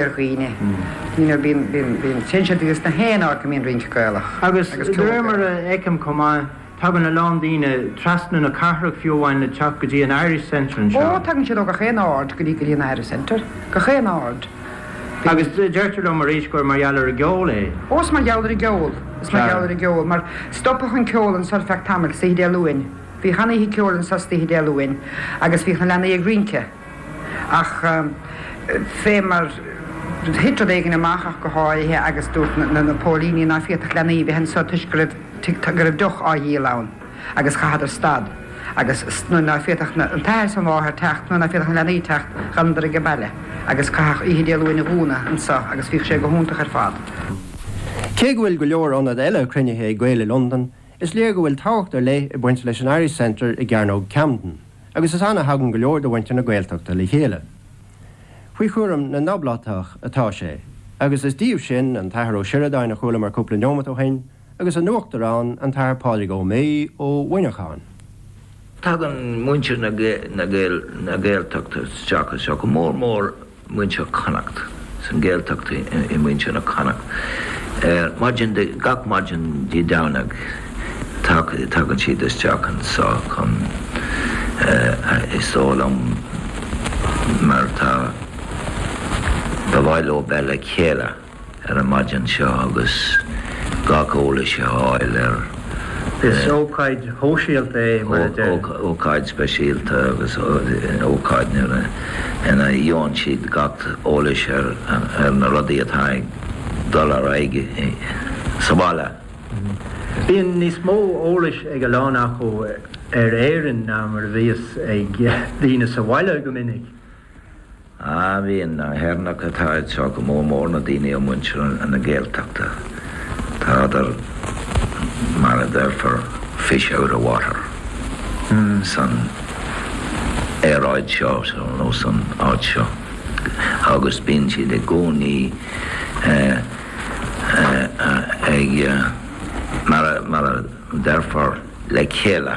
ar dhaoine. You know, bíonn, bíonn, bíonn, téann siad go dtí 's na haon áit go mbíonn rince Gaelach. Agus de réir mar a fheicim chomh maith, tagann a lán daoine trasna na cathrach fiú amháin le teacht go dtí an Irish Centre anseo. Ó, tagann siad ó gach aon aird go dtí, go dtí an Irish Centre. Gach aon aird. Agus deirtear liom arís gur mar gheall ar an gceol é. Ó, is mar gheall ar an gceol. Is mar gheall ar an gceol. Mar, stopadh an ceol anseo ar feadh tamaill, istoíche Dé Luain. Bhíodh an-oíche ceoil anseo istoíche Dé Luain agus bhíodh na leanaí ag rince. Ach fé mar thit rud éigin amach ach go háirithe agus dúirt na póilíní ná féadfadh leanaí a bheith anso toisc go raibh deoch á dhíol ann agus chaitheadar stad agus nuair ná féadfadh an t-athair is an mháthair teacht nuair ná féadfadh na leanaí teacht d'fhanadar age baile agus caitheadh oíche Dé Luain i gcúnamh anso agus bhíodh sé go hiontach ar fad. Cé go bhfuil go leor ionad eile cruinnithe ag Gaeil i Londain, is léir go bhfuil tábhacht ar leith ag baint leis an Irish Centre i gCearnóg Camden. agus is ann a thagann go leor de mhuintir na Gaeltachta le chéile. Faoi chúram na nOblátach atá sé, agus is díobh sin an tAthair Ó Sioradáin a chualamar cúpla neomat ó shin, agus a n-uachtarán, an tAthair Pádraig Ó Méith ó Mhuineachán. Tagann muintir na Gaeltachta isteach anseo go mór mór. muintir Connacht, san Gaeltacht i muintir na Connacht. Ar maidin de gach maidin Dé Domhnaigh tagann siad isteach anseo chun is dóigh liom mar tá, ba mhaith leo bheith le chéile. ar an maidin seo agus gach eolas a fháil ar. Is ócáid shóisialta é, mar a deir. ócáid speisialta agus ócáid nuair a ina gheobhann siad gach eolas ar na rudaí atá ag dul ar aghaidh sa bhaile. Bíonn níos mó eolais ag a lán acu ar Éirinn ná mar a bhíos ag daoine sa bhaile go minic. Ah, bíonn na hÉireannaigh atá anseo, go mór mór na daoine ó mhuintir na Gaeltachta, tádar mar a déarfá fish out of water san aeráid seo nó san áit seo agus bíonn siad i gcónaí ag, mar a déarfá, le chéile.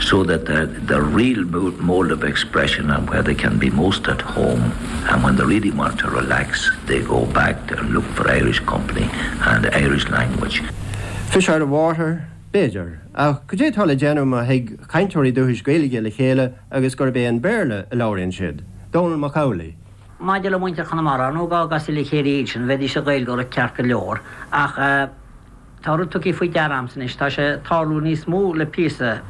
so that the, the real mode of expression and where they can be most at home and when they really want to relax they go back and look for Irish company and Irish language. Fish out of water? B'fhéidir, ach cad é atá le déanamh má thig cainteoirí dúchais Gaeilge le chéile agus gurb é an Béarla a labhraíonn siad? Dónall Mac Amhlaigh. Maidir le muintir Chonamara, dá gcasadh le chéile iad sin, bheidís ag Gaeilgeoireacht ceart go leor, ach. Tá rud tugtha faoi deara agamsa anois, tá sé ag tarlú níos mó le píosa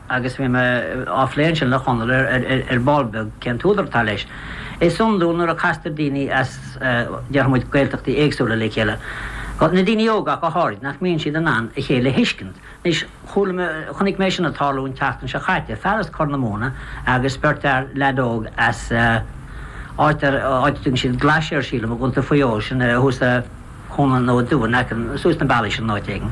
agus bhí mé á phlé ansin le Conall ar ball beag, cén t-údar atá leis. Is iondúil nuair a chastar daoine as, déarfaidh muid, Gaeltachtaí éagsúla le chéile, na daoine óga ach go háirid, nach mbíonn siad in ann a chéile a thuiscint. Anois, chuala mé, chonaic mé sin ag tarlú an tseachtain seo chaite, fear as Corr na Móna agus beirt fhear, leaid óg as áit ar, áit a dtugann siad Glaissear, sílim, i gContae Mhaigh Eo, sin thuas i. Chonaill nó Dubh in aice suas an bealach sin in áit éigin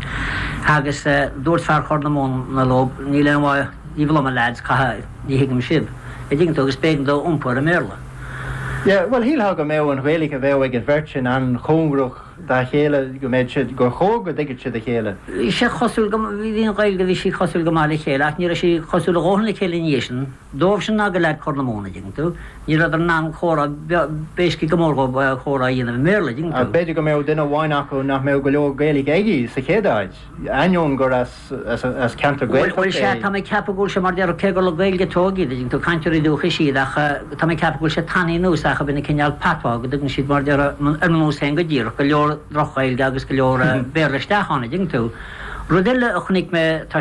agus dúirt fear Chorr na Móna leo, níl aon mhaith daoibh liom a leaids, caithfidh ní thuigim sibh, a' dtuigeann tú, agus b'éigean dó iompú ar an mBéarla. Yeah, bhuel shílfeá go mbeadh an Ghaeilge a bheadh ag an bheirt sin an-chóngarach dá chéile, go mbeadh siad, gur chóir go dtuigfeadh siad a chéile. Bhí sé cosúil go, bhí an Ghaeilge, bhí sí cosúil go maith le chéile ach ní raibh sí cosúil a dóthain le chéile i ndiaidh sin. Dóibhsean ná do leaid Chorr na Móna, dtuigeann tú, ní rabhadar in ann comhrá, basically níor mhór dhóibh comhrá a dhéanamh i mBéarla, dtuigeann tú. B'fhéidir go mbeadh duine amháin acu nach mbeadh go leor Gaeilge aige sa chéad áit, ainneoin gur as ceantar Gaeltachta é. Bhuel, sea, tá mé ag ceapadh go bhfuil sé mar déarfadh, cé gur le Gaeilge a tógadh iad, dtuigeann tú, cainteoirí dúchais iad ach tá mé ag ceapadh go bhfuil sé tagtha anuas acu ina chineál patois, go dtugann siad mar déarfadh, ar mo nós féin go díreach, go leor droch-Ghaeilge agus go leor Béarla isteach ann, a dtuigeann tú. Rud eile a chonaic mé, tá.